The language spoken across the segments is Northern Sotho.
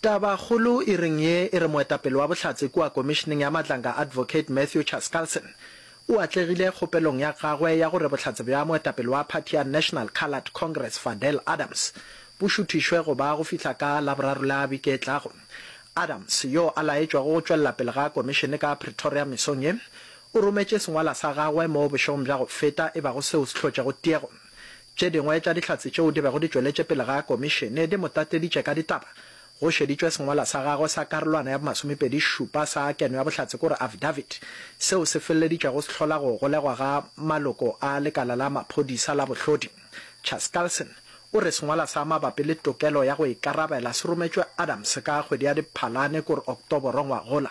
Tabakgolo e reng ye e re moetapele wa Bohlatse kua Komišeneng ya Matlanga Advocate Matthew Chaskalson o atlegile kgopelong ya gagwe ya gore bohlatse bja moetapele wa phathi ya National Coloured Congress Fadel Adams bo šuthišwe go ba go fihla ka Laboraro la beke e tlago. Adams yo a laetšwago go tšwelela pele ga Komišene ka Pretoria mesong ye o rometše sengwala sa gagwe mo bošegong bja go feta e bago seo se hlotšego tiego. Tše dingwe tša dihlatse tšeo di bego di tšweletše pele ga Komišene di mo tateditše ka ditaba. Go šeditšwe sengwalwa sa gagwe sa karolwana ya bomasomepedi šupa sa keno ya bohlatse kore Affidavit, seo se feleleditšego se hlola go golegwa ga maloko a lekala la maphodisa la bohlodi. Chaskalson o re sengwalwa sa mabapi le tokelo ya go ikarabela se rometšwe Adams ka kgwedi ya Diphalane kore Oktoboro ngwagola.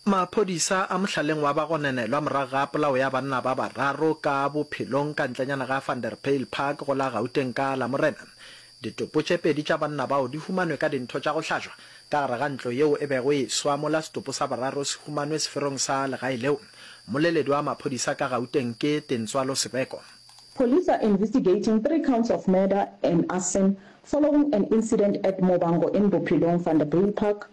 Maphodisa a mohlaleng wa bagononelwa morago ga polao ya banna ba bararo ka bophelong ka ntlenyana ga Vanderbijl Park go la Gauteng ka Lamorena. Ditopo tše pedi tša banna bao di humanwe ka dintho tša go hlajwa ka gare ga ntlo yeo e bego e swa mola setopo sa boraro se humanwe seferong sa legae leo. Mmoleledi wa maphodisa ka Gauteng ke Tintswalo Sebeko. Police are investigating three counts of murder and arson following an incident at Mobango in Bophelong, Vanderbijl Park.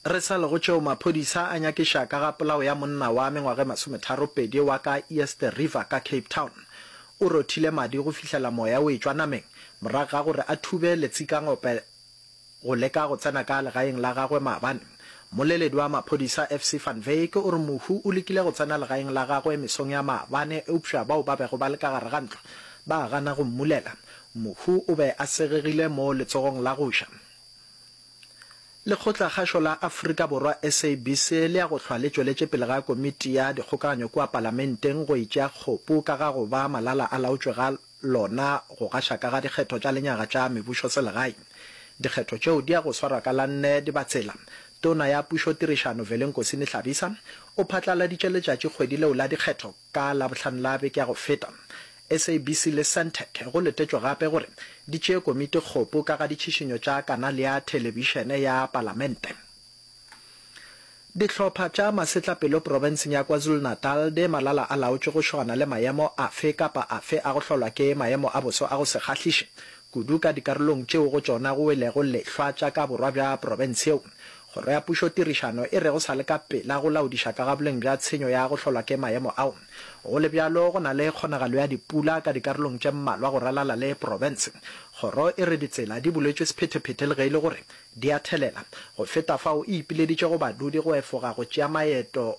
Re sa le go tšeo, maphodisa a nyakiša ka ga polao ya monna wa mengwaga e masometharopedi wa ka East River ka Cape Town. O rothile madi go fihlela moya o etšwa nameng morago ga gore a thube letsikangope go leka go tsena ka legaeng la gagwe maabane. Mmoleledi wa maphodisa FC van Wyk o re mohu o lekile go tsena legaeng la gagwe mesong ya maabane eupša bao ba bego ba le ka gare ga ntlo ba gana go mmulela. Mohu o be a segegile mo letsogong la go ja. Lekgotlakgašo la Afrika Borwa, SABC, le ya go hlwa le tšweletše pele ga Komiti ya Dikgokaganyo kua Palamenteng go itšea kgopu ka ga go ba malala-a-laotšwe ga lona go gaša ka ga dikgetho tša lenyaga tša mebušoselegae. Dikgetho tšeo di ya go swarwa ka la nne Dibatsela. Tona ya Pušotirišano Velenkosi Mihlabisa o phatlaladitše letšatšikgwedi leo la dikgetho. Ka Labohlano la beke ya go feta, SABC le Sentech go letetšwe gape gore di tšee komiti kgopo ka ga ditšhišinyo tša kanale ya thelebišene ya Palamente. Dihlopha tša masetlapelo profenseng ya KwaZulu-Natal di malala a laotšwe go šogana le maemo afe kapa afe a go hlolwa ke maemo a boso a go se kgahliše, kudu ka dikarolong tšeo go tšona go welego lehlwa tša ka borwa bja profense yeo. Kgoro ya Pušotirišano e re go sa le ka pela go laodiša ka ga boleng bja tshenyo ya go hlolwa ke maemo ao. Go le bjalo, go na le kgonagalo ya dipula ka dikarolong tše mmalwa go ralala le profense. Kgoro e re ditsela di buletšwe sephetephete le ge e le gore di a thelela. Go feta fao, e ipileditše go badudi go efoga go tšea maeto